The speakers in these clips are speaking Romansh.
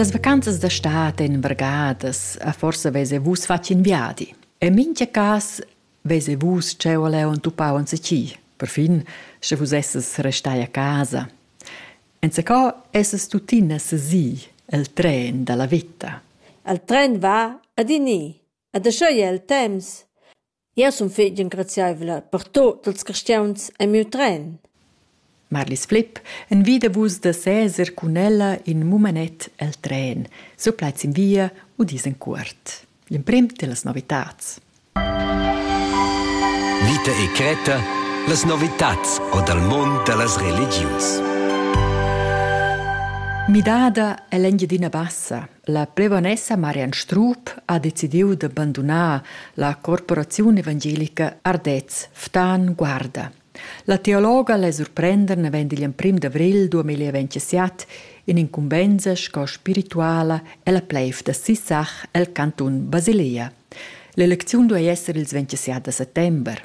Las vacanzas da stad en vargadas a forsa vese vus fatg in viadi. E mincha cas vese vus cheu leu und tupau un seci. Perfin sche vus esses restai a casa. Enzacò esses tuttina sesi el tren dalla vita. El tren va ad ini, ad schei el temps. Jeu sun fetg engraziaivla per tut ils carstgauns en miu tren. Marlis Flipp, envida vus da seser cun ella in mumenet el tren. So plaids in via u dis en cuort. L'emprim dellas novitads. Vita e cretta, las novitads o dal mund da las religius. Midada è l'Engiadina Bassa, La plevonessa Marian Strup ha decidiu da bandunar la corporaziun evangelica Ardez Ftan Guarda. La teologa le surprender naven digl emprim d'avril 2027 in incumbensa sco spirituala ella pleiv da Sissach el cantun Basilea. L'elecziun duei esser ils 27 da settember.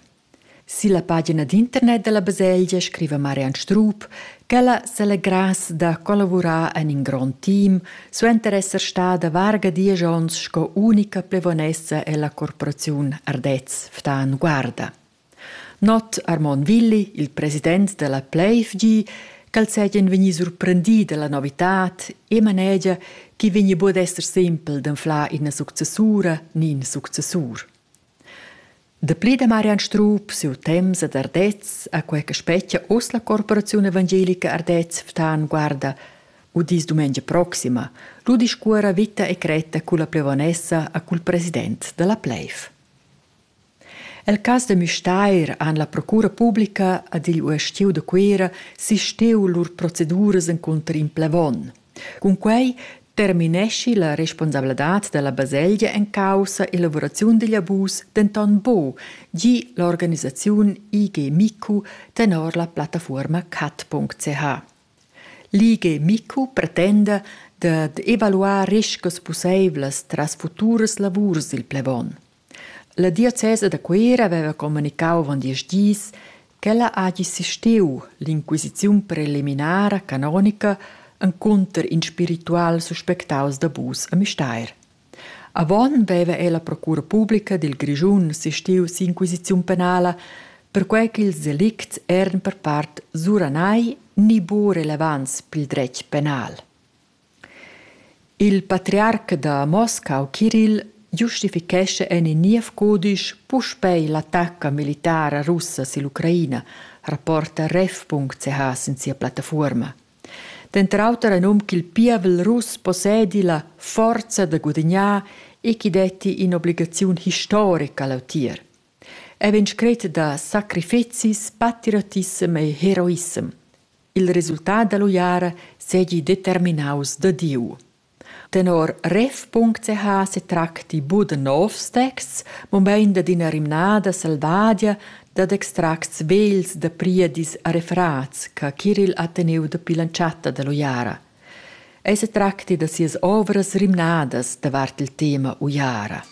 Silla pagina d'internet dalla baselgia scriva Marian Strup ch'ella selegrass da collavurar en in grond team suenter esser stada varga diesch onns sco unica plevonessa ella corporaziun Ardez Ftan Guarda. Not Armon Willi, il president della Pleifgi, ch'el seigien vegni surprendi dalla novitad e manegia che vegni bod esser sempel d'anflar ina successura ni in successur. Dapli da Marian Strup, siu temps ad Ardez, a quei che spetgia oz la corporaziun evangelica Ardez Ftan guarda udis dumengia proxima, lu discuora vita e cretta culla plevonessa a cul president dalla pleiv. El cas de Müstair han la procura publica ad igl uestiu de Cuera sisteu lur proceduras encunter in plevon – Cunquei termineschi la responsabladad dalla baselgia en caussa elavuraziun digl abus denton buc, gi l'organisaziun IG Micu tenor la plattafuorma cat.ch. L'IG Micu pretenda dad evaluar riscas pusseivlas tras futuras lavurs dil plevon. La diocesa da Cuera haveva communicau avon diesch dis ch'ella hagi sisteu l'inquisiziun preliminara canonica encunter in spiritual suspectaus d'abus a Müstair. Avon veva ei la procura publica dil Grischun sisteu si'inquisiziun penala, perquei ch'ils delicts eran per part suranai ni buca relevants pil dretg penal. Il patriarc da Moscau Kirill giustifichescha en in niev cudisch puspei l'attacca militara russa sill'Ucraina, rapporta ref.ch sin sia plattafuorma. Denter auter ein um ch'il pievel russ possedi la forza da gudignar e chi detti in'obligaziun historica lautier. È vegn scret da sacrifizis, patriotissem e heroissem. Il resultat dall'uiara seigi determinaus da Diu. Tenor ref.ch setracti buc da novs texts, mobein dad ina rimnada selvadia dad extracts vegls da priedis a refrats che Kiril ha teniu dapi l'entschatta dall'uiara. Ei setracti da sias ovras rimnadas davart il tema uiara.